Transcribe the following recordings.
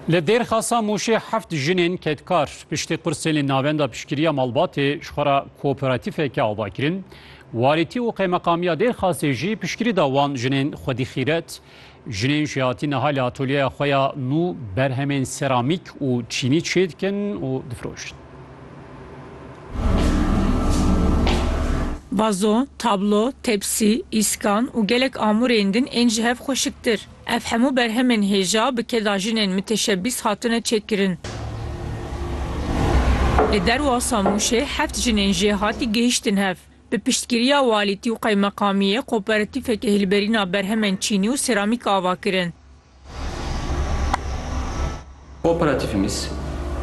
Li Dêrxasa Mûşê heft jinên kedkar piştî qursên navenda piştgiriya malbatê ji xwe re kooperatîfeke ava kirin. Walîtî û qeymeqamiya Dêrxasê jî piştgirî da wan jinên xwedî xîret. Jinên jî hatîn niha li atolyeya xwe ya nû berhemên seramîk û çînî çêdikin û difirojin. Vazo, tablo, tepsî, îskan û gelek amûrên din ên ji hev xweşiktir. Ev hemû berhemên hêja bi keda jinên miteşebîs hatine çêkirin. Li derwasa Mûşê heft jinên jêhatî gihiştin hev. Bi piştgiriya walîtî û qeymeqamiyê koperatîfeke hîlberîna berhemên çînî û seramîk ava kirin. Kooperatifimiz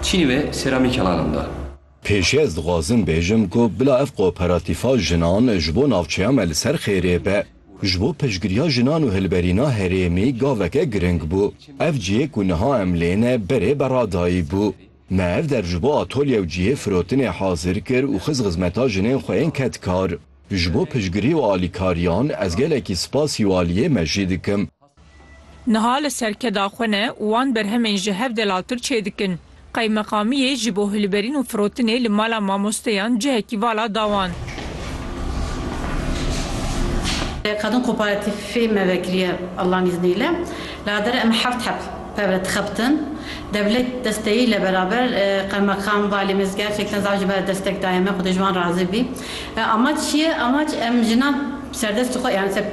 çînî ve seramî kelanan da. Pêşî ez dixwazim bêjim ku bila ev kooperatifa jinan ji bo navçeya me li ser xêrê be. Ji bo piştgiriya jinan û hilberîna herêmî gaveke giring bû. Ev cihê ku niha em lê ne berê beradayî bû. Me ev der ji bo atolye û cihê firotinê hazir kir û xist xizmeta jinên xwe yên kedkar. Ji bo piştgirî û alîkariyan ez gelekî spas û aliyê me jî dikim. Niha li serkeda xwe ne û wan berhemên ji hev delaltir çêdikin. Qeymeqamiyê ji bo hilberîn û firotinê li mala mamosteyan cihekî vala da wan. Kadın Kooperatifê me vekiriye Allah'ın izniyle. Ladere em heft heb pevre dixebtin. Devlet desteyiyle beraber Qeymakam, Valimiz gerçekten zaf ji ber destek daye me. Xwedê ji wan razî bî. Amac çi ye? Amac em jinan. Bi serdestî xwe yan ser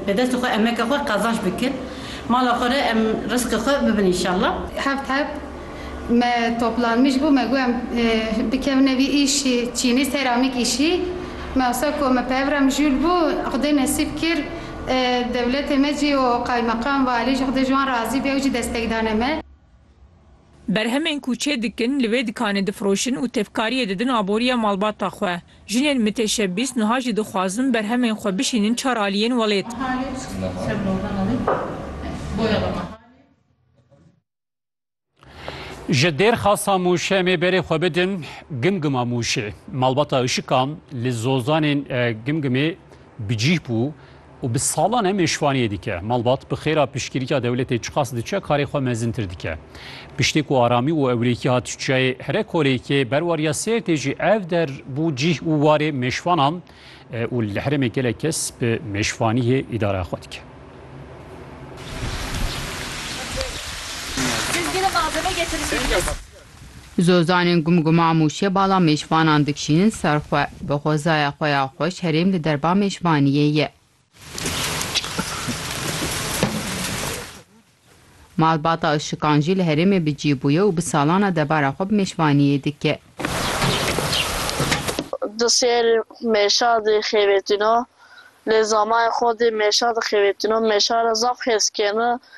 bi destê xwe emeke xwe qezanc bikin. Mala xwe re em rizqê xwe bibin înşallah. Hebt hebt me toplanmiş bû me got em bikevine vî îşî çînî seramîk îşî me wisa ku me pev re mijûl bû xwedê nesîb kir dewletê me jî û qaymeqam valî jî xwedê ji wan razî be ew jî destek dane me. Berhemên ku çê dikin li vê dikanê difiroşin û tevkariyê didin aboriya malbata xwe. Jinên miteşebbîs nuha jî dixwazin berhemên xwe bişînin çar aliyên welêt. Ji Dêrxasa Mûşê em ê berê xwe bidin Gimgima Mûşê. Malbata Işikan li zozanên Gimgimê bi cîh bû û bi salan em êşvaniyê dike. Malbat bi xêra piştgirîka dewletê çiqas diçe karê xwe mezintir dike. Piştê ku aramî û ewlêkî hat çiyayê Herekolêkê, berwariya Sêrtê jî ev der bû cîh û warê mêşvanan û li herêmê gelek kes bi mêşvaniyê îdareya xwe dike. Zozanên Gumguma Mûşê bala mêşvanan dikişînin ser xwe. Bi xwezaya xwe ya xweş herêm li derba mêşvaniyê ye. Malbata Işikan jî li herêmê bi cî bûye û bi salan e debara xwe bi mêşvaniyê dike. Di ser mêşa de xêvêtino. Lê zamayê xwe dê mêşa de xêvêtino. Mêşa re zaf hêz keno.